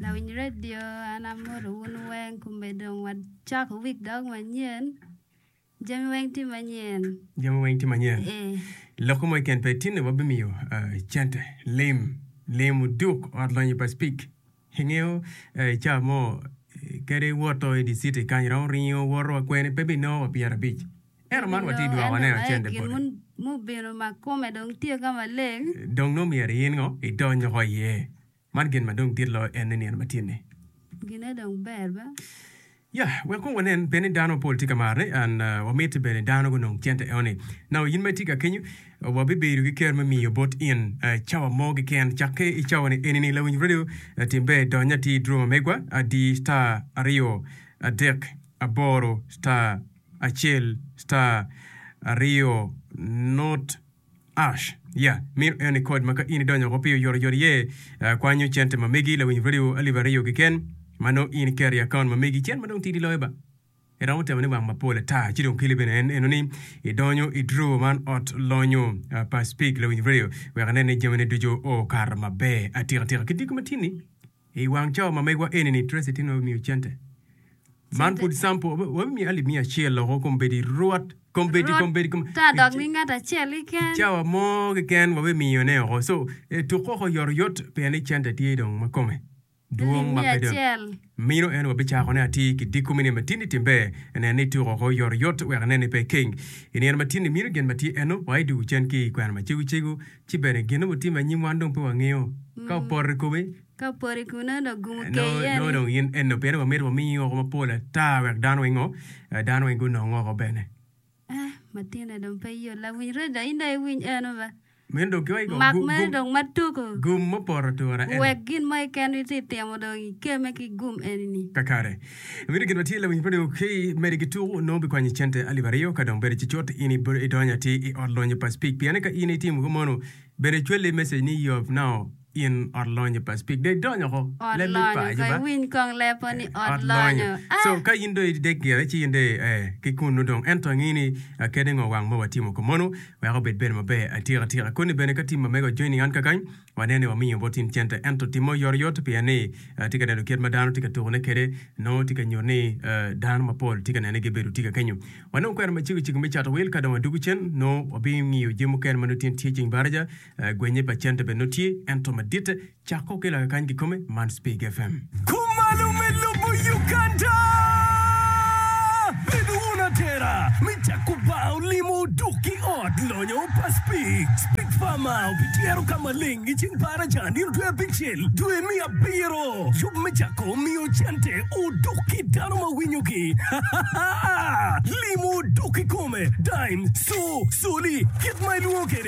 Lawiny redio an amodo wun weng kome dong wacako wik dog manyen. Jami weng tye manyen. Jami weng tye manyen. Ee. Lokke mo keken pe tinne wabimiyo uh, cente. Lim, lim oduk ot lonyo pa Spik. Ingeyo uh, i ca mo kadi woto i di city kany romo ringo woto wa kwene pe binongo wa pyera abic. Ento man watye dwoko ane o cente boti. Mun mubino ma kome dong tye ka maleng. Dong nongo myero in ngo idony oko iye. Man gin ma dong dit loyo en ni nino ma tye ni. Gine dong ber ba. Ya, wek kong wanen bene ni dano mapol tye ka marre. And wamiti bene dano gunong cente eo ni. Now in ma itye ka kenyo, wa bi bedo ki ker me miyo bot in cawa mo gi ken. Cakke i cawa ni eni ni lawinyo radio tim ber idony ati i droma megwa a di star aryo adek aboro star acel star aryo not Ash, Yeah, mito en ni kod ma ka in idonyo woko pi oyotoyot iye, akwanyo cente ma megi lawiny radio alip aryo keken ma nongo in iketo i akaunt ma megi, cen ma dong tidi loyo ba. Iromo temo ni wang mapol ata. Ci dong kele bene en eno ni idonyo i drawer man ot lonyo pa Speke lawiny radio wek inen ni jamine ducu okato maber atikatika. Ki diko matin-ni, I wang cawa ma megwa eni ni Tracy tin ma bimiyo cente man pud sample wa bimiyo alip miya acel loko kombedi rwot kombedi kombedi kombedi ta dok mi ngat acel keken cawa mo keken wa bimiyo ne oko so etuk oko yot yot pien ni cente tye dong ma kome dwong ma pe dong mino eno wa bicako ne atir ki diko me nino ma tin ni tim ber nen ni tuk oko yot yot wek nen ni pe keng I nino ma tin ni mino gin ma tye eno wa idugu cen ki kwena ma cego cego Ci bene, gin ma otimme anyim wan dong pe wangeyo. Ka opoto i kome, nongo dong in enno. Pien wamito wami oko mapol ata wek dano weng ongo, dano weng gunong oko bene. Meno dong kikoki kong, gum mupoto atura ene. Kakare. Miti gin ma tye lawiny pe dong ki mede ki tuku nongo bikwanyi cente alip aryo ka dong bedi ci cut in idonyo atir i ot lonyo pa Spik piane ka in itimo ko mono bene cwelle i message ni yob nao in ot lonyo pa Spik dong idonyo oko leb me pa juba ot lonyo so ka in dong idek gire ci in dong ee ki kunnu dong ento angi ni kene ngo wang ma watimo ko mono weko bed bene maber atika tika koni bene ka tim ma mege ojoining an kakany Waneno ni wamiyo bot in cente, ento timme oyotoyot pien ni atye ka neno kit ma dano tye ka tukone kwede, nongo tye ka nyuto ni dano mapol tye ka nene gibedo tika kenyo. Wanongo kwena macego cego me cato wil. Ka dong wadwogo cen, nongo wabingiyo jami mukene ma nongo tye nityee. Ceng Baraja, gwenye pa cente bene nongo tye, ento maditte cako ki loyo kany kikome, man Spig FM. Kumalo me lobo Uganda. Bed wun atera me jako baa olimo oduk ki ot lonyo pa Speed. Big Pharma obityero ka maleng i ceng Baraja nino dwe abicel dwe me abiro. Yub me jako miyo cente oduk ki dano ma winyogi. Limo oduk kikome, Dime, Soo, Soli, kit ma ilwongo kwede.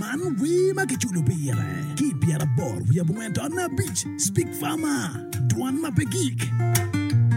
Man wer ma kiculo pire ki i pyeraboro wiye abongwen tato naya abic, Speak Farmer, Dwan ma pe gik.